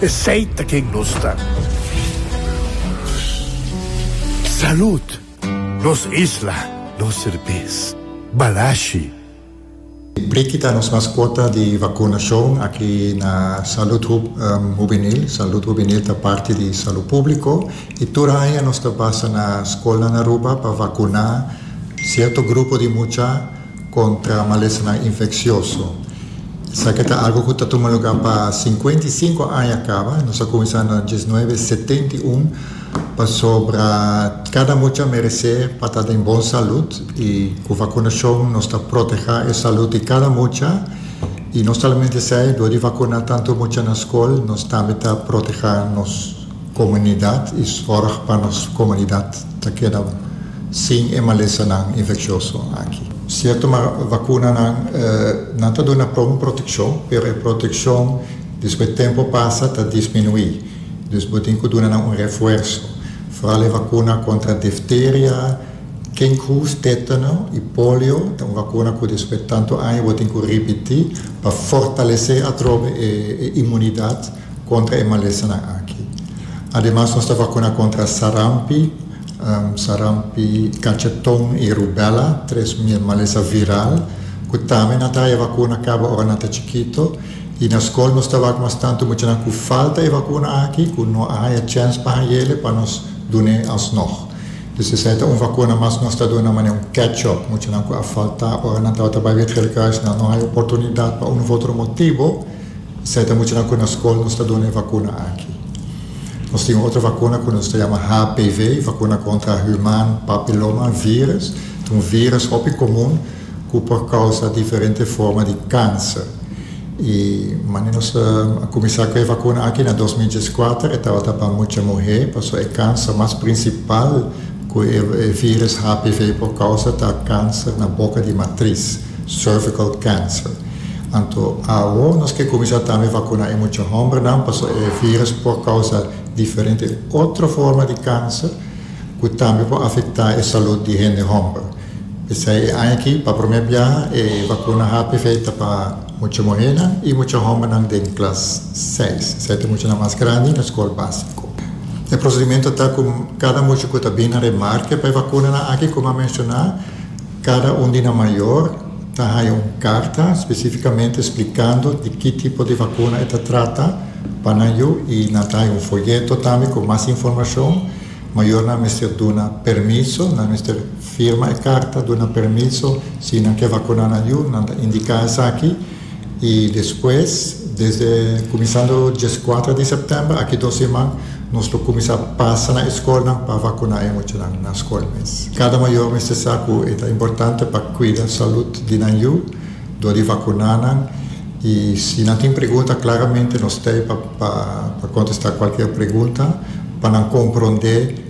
Esey ta ken nos ta. Salud! Nos isla, nos serbes. Balashi. Briki ta nos mascota di vacunacion aki na Salud Hubenil. Salud Hubenil ta parti di Salud Publico y tur aña nos ta pasa na scolnan Aruba pa vacuna cierto grupo di mucha. kontra malesanan infeksioso. Esaki ta algu ku ta tuma lugá pa sinkuenta i sinku aña kaba. Nos a kuminsá na dies nuebe setenta i un pasobra kada mucha meresé pa ta den bon salud i ku vakunashon nos ta protehá e salud di kada mucha i no solamente esei dor di vakuná tantu mucha na skol nos tambe ta protehá nos. Komunidat i sòrg pa nos komunidat ta keda sin e malesanan infeksioso aki. Sierto ma vakunanan nan ta duna pron protekshon pero e protekshon despues tempu pasa ta disminuí. Dus bo tin ku duna nan un refuerso, foral e vakuna kontra difteria, kinkhoes, tetano i polio ta un vakuna ku despues tantu aña bo tin ku ripití pa fortalesé atrobe e imunidat. kontra e malesanan aki. Ademas nos ta vakuna kontra sarampi, sarampi, kacheton i rubela, tres malesa viral ku tambe nan ta haña vakuna kaba ora nan ta chikito. I na skol nos ta wak mas tantu muchanan ku falta e vakuna aki ku no a haña chèns pa haña el pa nos dun'e alsnòg. Dus esei ta un vakuna mas ku nos ta duna manera un catch up. Muchanan ku a faltá ora nan tabata bai Betrel Kruis nan no haña oportunidat pa un òf otro motibu. Esei ta muchanan ku na skol nos ta duna e vakuna aki. Nos tin un otro vakuna ku nos ta yama HPV, Vakuna Kontra Human Papiloma Virus. Ta un virus hopi komun ku por kousa diferente forma di kanser. I manera nos a kuminsá ku e vakuna aki na dos mil dies kuater e tabata pa mucha muhé pasobra e kanser mas prinsipal ku e virus HPV por kousa ta kanser na boka di matris. Cervical cancer. Anto awo nos ke kuminsá tambe vakuná e mucha hòmbernan pasobra e vírùs por kousa diferente otro forma di kanser ku tambe por afektá e salùt di hende hòmber. P'esei e aña aki pa promé biaha e vakuna HPV ta pa mucha muhénan i mucha hòmbernan den klas seis, esei ta muchanan mas grandi na skol básiko. E prosedimentu ta ku kada mucha ku ta bini na remarke pa e vakunanan aki, komo a menshoná, Cada un di nan mayor ta haya un carta specificamente splicando di ki tipo di vacuna e ta trata pa nan yu y nan ta haya un folleto tambe cu mas informacion. Mayornan mester duna permiso, nan mester firma e carta duna permiso si nan ke vacuna nan yu, nan ta indica esaki. Y despues desde cuminsando diescuatra di september aki dos siman nos lo cuminsa pasa na escolnan pa vacuna e muchanan na scol mes. Cada mayor mester sa cu e ta importante pa cuida salud di nan yu dor di vacuna nan y si nan tin pregunta claramente nos ta ey pa contesta cualkier pregunta pa nan compronde.